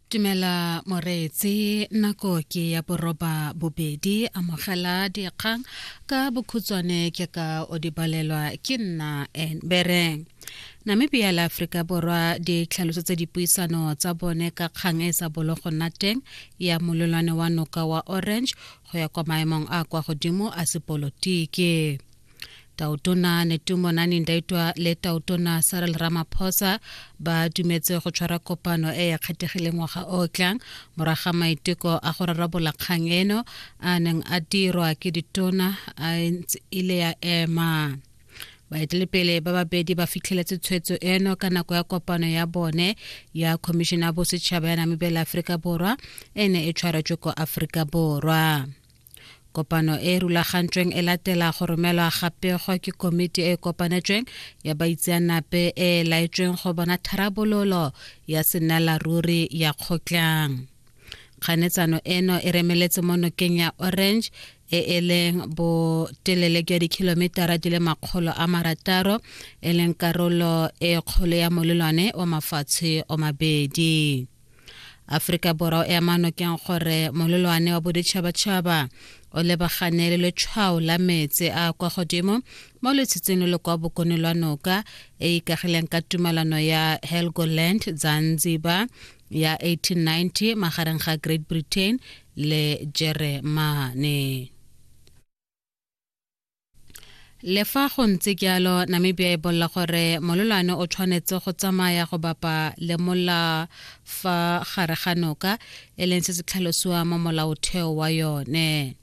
Tumela Moreetsi nako ke ya boroba bobedi amogela dikgang ka bokhutswane ke ka o di balelwa ke nna Enbereng Namibia le Aforika Borwa di tlhalosetse dipuisano tsa bone ka kgang e sa bolo go nna teng ya mololwane wa noka wa Orange go ya kwa maemong a kwa godimo a sepolotiki taotona netumo nani ndaitwa le taotona sarel ramaphosa ba dumetse go tshwara kopano e ya kgethegileng ngwaga o tlang moraga maiteko a go rarabola kgang eno a neng a dirwa ke ditona a ile ya ema baetelepele ba babedi ba fitlheletse tshwetso eno ka nako ya kopano ya bone ya khomišene ya bosetšhaba ya namibela aforika borwa e ne e tshwaretswe ko aforika borwa Kopano e e rulagantsweng e latela go romelwa ga pego ke komiti e e kopanetsweng ya baitseanape e e laetsweng go bona tharabololo ya senelaruri ya kgotlang kganetsano eno e remeletse mo nokeng ya orange e e leng botelele jwa dikhilometara di le makgolo a marataro e leng karolo e kgolo ya molelwane wa mafatshe o mabedi aforika borwa e amano keng gore mololwane wa boditšhabatšhaba o lebagane le letshwao la metse a kwa godimo mo letshitseng le kwa bokone lwa noka e ikagileng ka tumalano ya helgoland zanzibar ya 1890 magareng ga great britain le jeremane le fa go ntse jalo namibia e bolela gore mololwane o tshwanetse go tsamaya go bapa le mola fa gare ga noka e leng se se tlhalosiwa mo molaotheo wa yone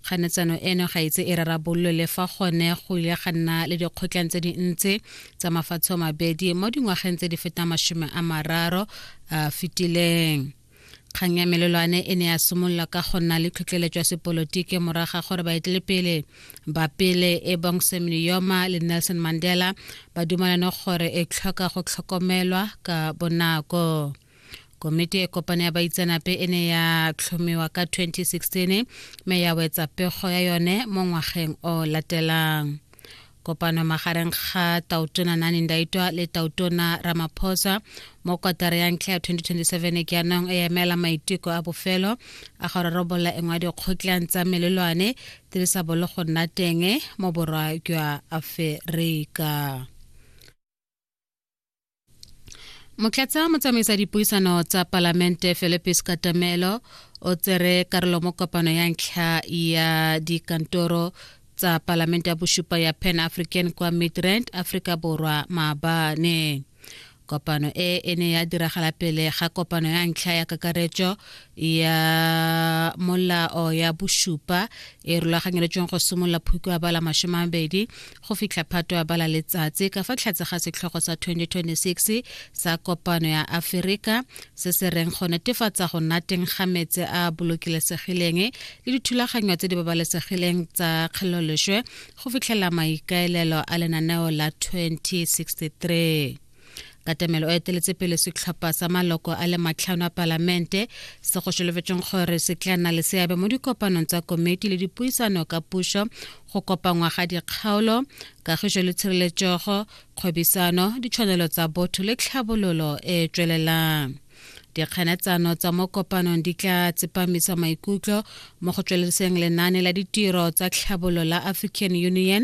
kganetsano eno ga itse e rarabololwe le fa gone go ile ga nna le dikgotlang tse dintsi tsa mafatshe mabedi mo dingwageng tse di fetang masome a mararo a fetileng kgang ya melelwane e ne ya simolola ka go nna le tlhotlheletso ya sepolotiki moraga gore baetelepele ba pele e bong sam niyoma le nelson mandela ba dumalane gore e tlhoka go tlhokomelwa ka bonako komiti e kopane ya baitsanape e ne ya tlhomiwa ka 2016 mme ya wetsa pego ya yone mo ngwageng o latelang Kopano magareng ga Tautona Nani Ndaitwa le Tautona Ramaphosa mo kotara ya ntlha ya 2027 ke yanong e emela maiteko a bofelo a go rarabolola engwe ya dikgotlang tsa melelwane tse di sa bolo go nna teng mo borwa jwa Aferika. motlatsa motsamaisa dipuisano tsa palamente philipis katamelo o tsere karolo mo kopano ya ntlha ya dikantoro tsa palamente ya bosupa ya pan african kwa midrand aforika borwa maabane kopano e e ne ya diragala pele ga kopano ya ntlha ya kakaretso ya molao ya bosupa e rulaganyeletšweng go simolola phukwa ba la masome mabedi go fitlha phato ya bala letsatsi ka fa tlhatse ga setlhogo sa 2026 sa kopano ya aferika se se reng go netefatsa go nna teng ga metse a bolokilesegileng le dithulaganyo tse di babalesegileng tsa kgeloloshwe go fitlhela maikaelelo a lenaneo la 2063 katamelo o eteletse pele setlhopha sa maloko a le matlhano a palamente se go solofetseng gore se tla nna le seabe mo dikopanong tsa komiti le dipuisano ka puso go kopangwa ga dikgaolo kagiso le tshireletsego kgwebisano ditshwanelo tsa botho le tlhabololo e e tswelelang dikganetsano tsa mo kopanong di tla tsepamisa maikutlo mo go tsweleseng lenane la ditiro tsa tlhabololo la african union